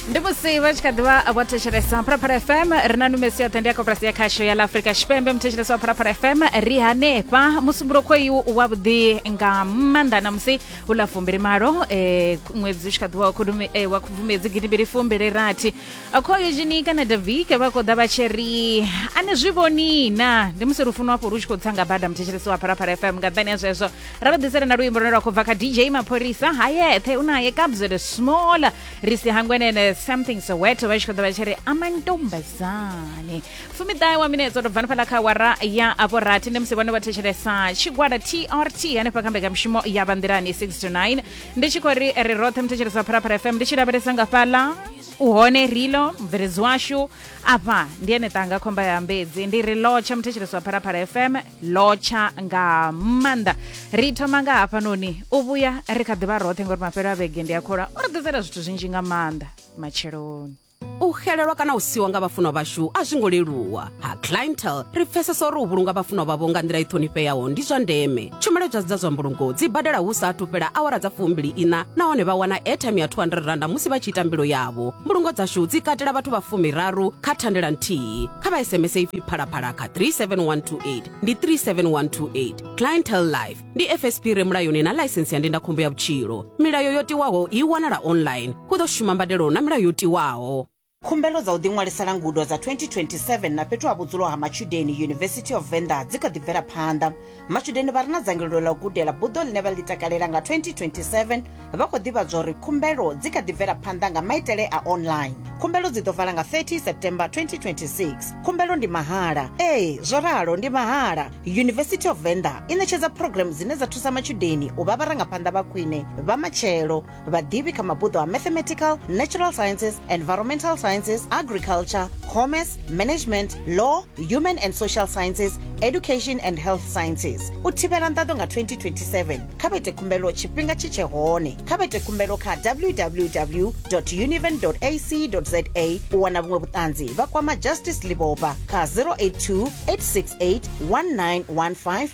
ndi musi vha tshi kha ḓivha vho thetshelesa phalaphala fm ri na numesi yoṱhe ndi ya koporasi ya khasho ya ḽa afrika tshipembe muthetshelesi wa phalaphala fm ri hanefha musumbulo khoyu wa vhuḓi nga maanḓa na musi hu ḽa fumbili malo eh, ṅwedzi u tshi kha ḓivha wa khudumi- eh, wa khubvumedzi gidimbili fumbili rathi khoyu zhini kana davike vha khou ḓa vha tshi ri a ni zwi vhoni na ndi musi lufuno hafho lu tshi khou tsa nga bada muthetshelesi wa phalaphala fm nga nṱhani ya zwezwo ra vha ḓisela na luimbo lune lwa khou bva kha dj mapholisa ha yeṱhe u naye kabzele small ri si hangwenene something soweto vha tshi khou ḓa vha tshi ri amantombazane fumiṱahe wa minetse tou bvani fhaḽa kha wara ya afho rathi ndi musi vhone vha thetshelesa tshigwada trt hanefha kha mbekamishumo ya vhanḓilani 6 to 9 ndi tshi khou ri ri roṱhe muthetshelesa phalaphala fm ndi tshi lavhelesa nga fhaḽa uhone rilo mubveledzi washu afha ndi ene ṱanga khomba ya mbedzi ndi ri lotsha muthetshelesi wa phalaphala fm lotsha nga maanḓa ri thoma nga hafhanoni u vhuya ri kha ḓivha roṱhe ngori mafhelo a vhege ndi a khola o ri ḓisela zwithu zwinzhi nga maanḓa matsheloni u xelelwa kana u siwa nga vhafunwa vhashu a zwi ngo leluwa ha clientel ri pfesesa uri u vhulunga vhafunwa vhavho nga nḓila i ṱhonifheaho ndi zwa ndeme tshumelo dzadzi dza zwa mbulungo dzi badela hu sa athu fhela awara dza fumbili ina nahone vha wana airtime ya 200 randa musi vha tshi ita mbilo yavho mbulungo dzashu dzi katela vhathu vha fumiraru kha thandela nthihi kha vha sms ipfi phalaphala kha 37128 ndi 37128 clientele life ndi fsp re mulayoni na ḽaisensi ya ndindakhombo ya vhutshilo milayo yo tiwaho i wanala online hu ḓo shuma mbadelo na milayo yo tiwaho khumbelo dza u ḓiṅwalisela ngudo dza 2027 na fhethu ha vhudzulo ha matshudeni university of venda dzi kha ḓi bvela phanḓa matshudeni vha re na dzangalelo ḽa u gudela buḓo ḽine vha ḽi takalela nga 2027 vha khou ḓivhadzwa uri khumbelo dzi kha ḓi bvela phanḓa nga maitele a online khumbelo dzi ḓo vala nga 30 september 2026 khumbelo ndi mahala ee zwo ralo ndi mahala university of venda i ṋetshedza programu dzine dza thusa matshudeni u vha vharangaphanḓa vha khwine vha matshelo vhaḓivhi kha mabuḓo a mathematical natural sciences environmental sciences agriculture commerce management law human and social sciences education and health sciences u thivhela nḓaḓo nga 2027 kha vha ite khumbelo tshifhinga tshi tshe hone kha vha ite khumbelo kha www univen ac za u wana vhuṅwe vhuṱanzi vha kwama justice liboba kha 082 868 1915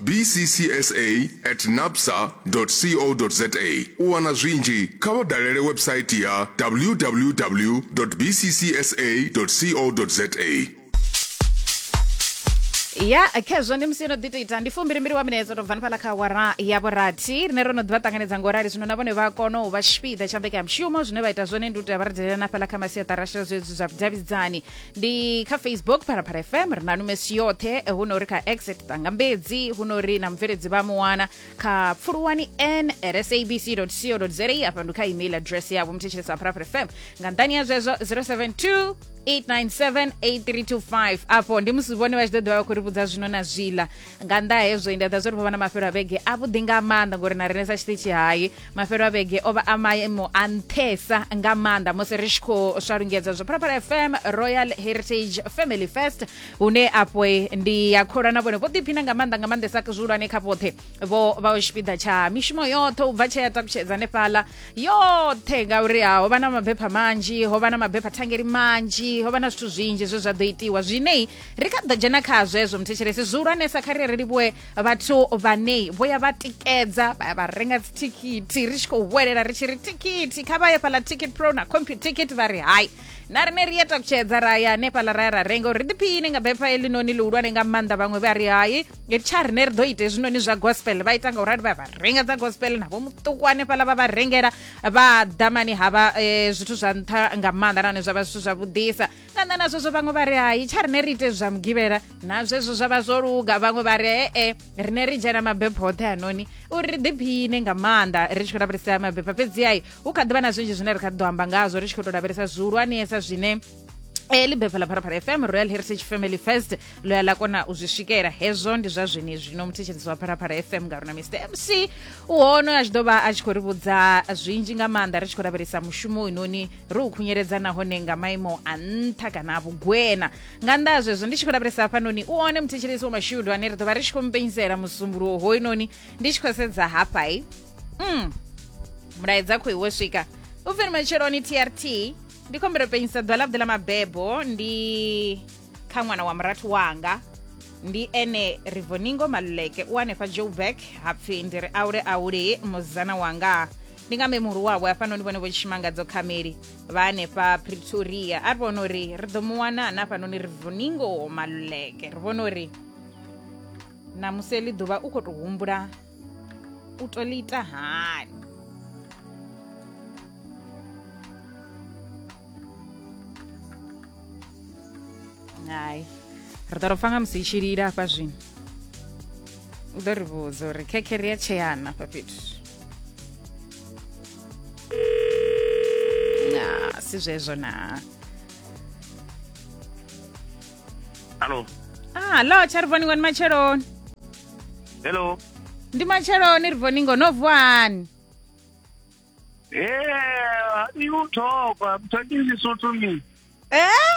bccsa at napsa co za u wana zwinzhi kha vha dalele website ya www bccsa co za ya khezwo ndi musi yo no ḓi to ita ndi fumbilimbili wa minetse tou bva ni fhaḽa kha awara ya vhurathi rine ro no ḓivha ṱanganedza ngo rali zwino na vhone vha kona u vha tshipiḓa tsha mbekanya mushumo zwine vha ita zwone ndi u tea vha ri dalela na fhaḽa kha masiaṱarasha zwezwi zwa vhudavhidzani ndi kha facebook phalaphala fm ri na numesi yoṱhe eh, hu no ri kha exit ṱangambedzi hu no ri na mubveledzi vha muwana kha pfuluwani n at sabc co za afha ndi kha email address yavho muthetshelesa phalaphala fm nga nṱani ya zwezwo 072 897 8325 afho ndi musi vhone vha tshi ḓo ḓivha vha khou ri vhudza zwino na zwiḽa nga nnḓa ha hezwo ndi a ḓa zwo ri vho vha na mafhelo a vhege a vhuḓi nga maanḓa ngori na riṋe sa tshiṱitshi hai mafhelo a vhege o vha a maimo a nṱhesa nga maanḓa musi ri tshi khou swa lungedza zwa phalaphala fm royal heritage family fest hune afho ndi ya kholwa na vhone vho ḓiphina nga maanḓa nga maanḓesa zwihulwane kha vhoṱhe vho vha o tshipiḓa tsha mishumo yoṱhe u bva tshea takutshedza hanefhaḽa yoṱhe ngauri ha ho vha na mabepha manzhi ho vha na mabepha thangeli manzhi ho vha na zwithu zwinzhi zwe zwa ḓo itiwa zwinei ri kha ḓa dzhena kha zwezwo muthetshelesi zwihulwanesa kha ri ri livhuwe vhathu vhanei vho ya vha tikedza vha ya vha renga dzithikhithi ri tshi khou vhuelela ri tshi ri thikhithi kha vha ye fhaḽa ticket pro na computicket vha ri hai na rine ri ya takutshedza ra ya hanefhaḽa ra ya ra renga uri ḓiphiine nga bepha eḽinoni ḽihulwane nga maanḓa vhaṅwe vha ri hai tsha rine ri ḓo ita hezwinoni zwa gospel vha ita nga u rali vha ya vha renga dza gospel navho muṱuku hanefhaḽa vha vha rengela vha ḓamani havha um zwithu zwa nṱha nga maanḓa nahone zwa vha zwithu zwavhuḓisa na nṋe na zwezwo vhaṅwe vha ri hai tsha rine ri ite zwa mugivhela na zwezwo zwa vha zwo luga vhaṅwe vha ri ee rine ri dzhena mabepho hoṱhe hanoni uri ri ḓiphine nga maanḓa ri tshi khou lavhelesea mabepho fhedzi ai hu kha ḓivha na zwinzhi zwine ri kha ḓi ḓo amba ngazwo ri tshi khou tou lavhelesa zwihulwanesa zwine e li bepha la pharapara fm royal heritage family first ḽo ya ḽa kona u zwi swikela hezwo ndi zwa zwene zwino muthetshelisi wa pharapara fm nga rona mr mc u hono a tshi ḓo vha a tshi khou ri vhudza zwinzhi nga maanḓa ri tshi khou lavhelesa mushumo inoni ro u khunyeledza nahone nga maimo a nṱha kana a vhugwena nga nnḓa ha zwezwo ndi tshi khou lavhelesa hafhanoni u one muthetshelesi wa mashudu ane ri ḓo vha ri tshi khou mpenyisela musumbuluwo hoyunoni ndi tshi khou sedza hafhai mm. mulaedza khoi wo swika u pfiri matsheloni trt ndi khombelo penyisa ḓwa ḽavhuḓi ḽa mabebo ndi kha ṅwana wa murathu wanga ndi ene rivoningo maluleke u hanefha joburg hapfi ndi ri aule aule muzana wanga ndi nga mbe muhulu wavho hafhanoni vhone vho tshimangadzo khameli vha hanefha pretoria a ri vhona uri ri ḓo mu wana na hafhanoni ri vuningo maluleke ri vhona uri namusi eḽi ḓuvha u khou tou humbula u to ḽi ita hani hai ri ḓo ro pfa nga musi i tshi lila hafha zwino u ḓo ri vhudza uri khekhere ya tsheana hafha fhethu na si zwezwo na Hello. ah lo tsha ri vhoni ngoni matsheloni Hello. ndi matsheloni ri vhoni ngo no vuwani Yeah, you talk. I'm talking Lesotho me. eh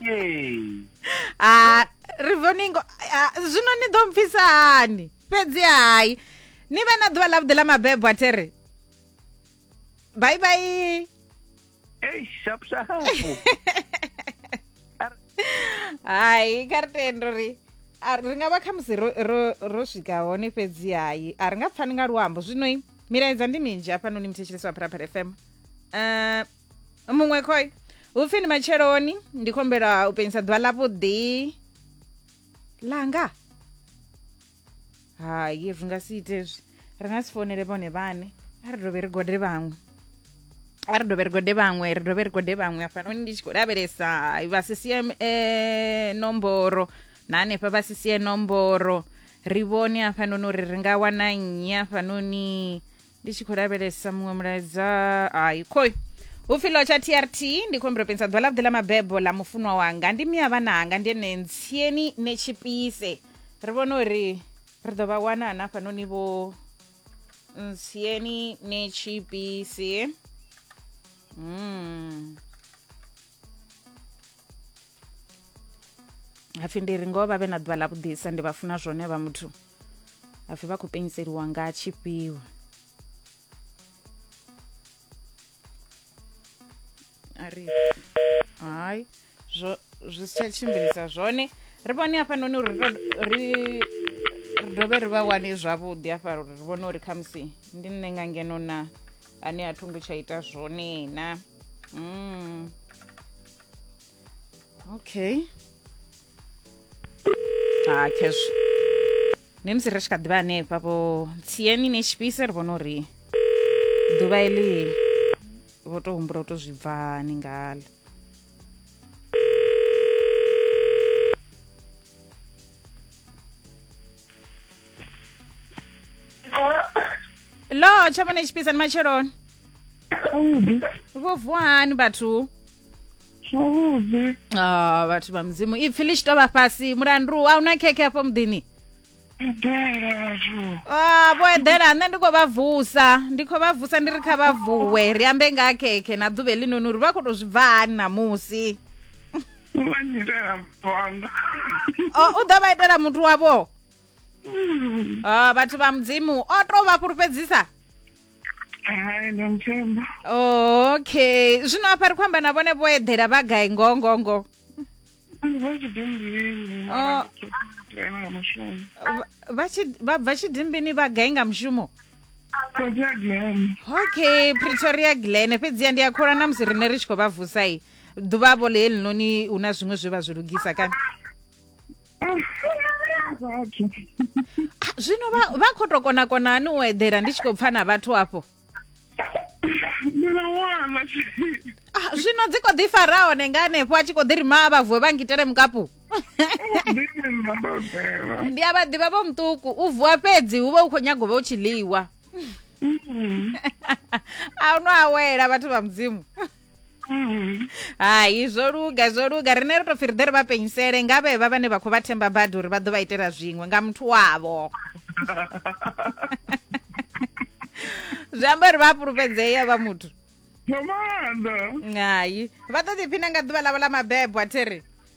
Yey. ha ri vhoni ngo ah, zwino ni ḓo mpfisa hani fhedzi hai ni vhe na ḓuvha ḽavhuḓi ḽa mabebo a tere bye bye Hey, sharp sharp. hai kha ri tendo ri a- ri nga vha khamusi ro- ro- ro swika hone fhedzi hai a ri nga pfani nga luambo zwinoi milaedza ndi minzhi hafhanoni muthetshelesi wa pharapara fm um muṅwe khoi hupfi ndi matsheloni ndi khombela u penyisa ḓuvha ḽa vhuḓi langa hayi ri nga si ite zwi ri nga si founele vhone vhane a ri dovhe ri gode vhaṅwe a ri dovhe ri gode vhaṅwe ri dovhe ri gode vhaṅwe hafhanoni ndi tshi khou lavhelesa vha sisie um eh, nomboro na hanefha vha sisie nomboro ri vhone hafhanoni uri ri nga wana nnyi hafhanoni ndi tshi khou lavhelesa muṅwe mulaedza hayi khoi vhupfhilo tsha trt ndi khou humbela u penisa ḓuvha ḽavhuḓi ḽa mabebo ḽa mufunwa wanga ndi miya vhana anga ndi ene ntsieni ne tshipise ri vhona uri ri ḓo vha wana ana hafhanoni vho ntsieni ne tshipise mm. hapfi ndi ri ngoho vha vhe na ḓuvha ḽa vhuḓisa ndi vha funa zwone vha muthu hapfi vha khou penyiseliwa nga tshifhiwa ari hai zwo zwi si tsha tshimbilisa zwone ri vhone hafhanoni uri ri dovhe ri vha wane zwavhuḓi hafha uri ri vhone uri khamusi ndi nṋe nga ngeno na ane a thungo tsha ita zwone na mm. okay ha ah, cash ne musi ri tshi kha ḓivha hanefha vho tsiyeni ne tshipise ri vhona uri ḓuvha eḽi vho tou humbula u tou zwi bvani ngalo lo tsha vhona tshipisa ni matsheloni Zwavhuḓi. vho vuwa hani vhathu Zwavhuḓi. Ah, vhathu vha mudzimu ipfhi ḽi tshi to vha fhasi mulandu a una khekhe afho muḓini eḓela vhathu Ah, vho eḓela nṋe ndi khou vha vusa ndi khou vha vusa ndi ri kha vha vuwe ri ambe nga ha khekhe na ḓuvha heḽinoni uri vha khou tou zwi bva hani ṋamusi vha nyitela muthu wanga o u ḓo vha itela muthu wavho Mm. Ah, vhathu vha mudzimu o tou vha fhulufhedzisa hai ndo muthemba okay zwino afha ri khou amba na vhone vho eḓela vha gai ngoho ngoho ngoho Oh. vabva chidimbini vagai nga mushumo okay pretoria glen fhedzi ya ndi a khola na musi rine ri tshi khou vha vusai ḓuvhavo ḽe helinoni hu na zwiṅwe zwe vha zwi lugisa kana zwino vha khou tou konakona hani u eḓela ndi tshi khou pfa na vhathu afho Ah, zwino dzi kho ḓi fara hone nga hanefho a tshi kho ḓi ri maa vha vuwe vha ngitele mukapu ndi a vha ḓivha vho muṱuku u vuwa fhedzi hu vha u khou nyago vha u tshi ḽiwa a u no awela vhathu vha mudzimu Mhm. hai zwo luga zwo luga rine ri to pfi ri ḓe ri vha penyisele nga vhevha vhane vha khou vha themba badi uri vha ḓo vha itela zwiṅwe nga muthu wavho zwi amba uri vha a fhulufhedzea vha muthu nga maanḓa hai vha ḓo ḓiphina nga ḓuvha ḽavho ḽa mabebo a thiri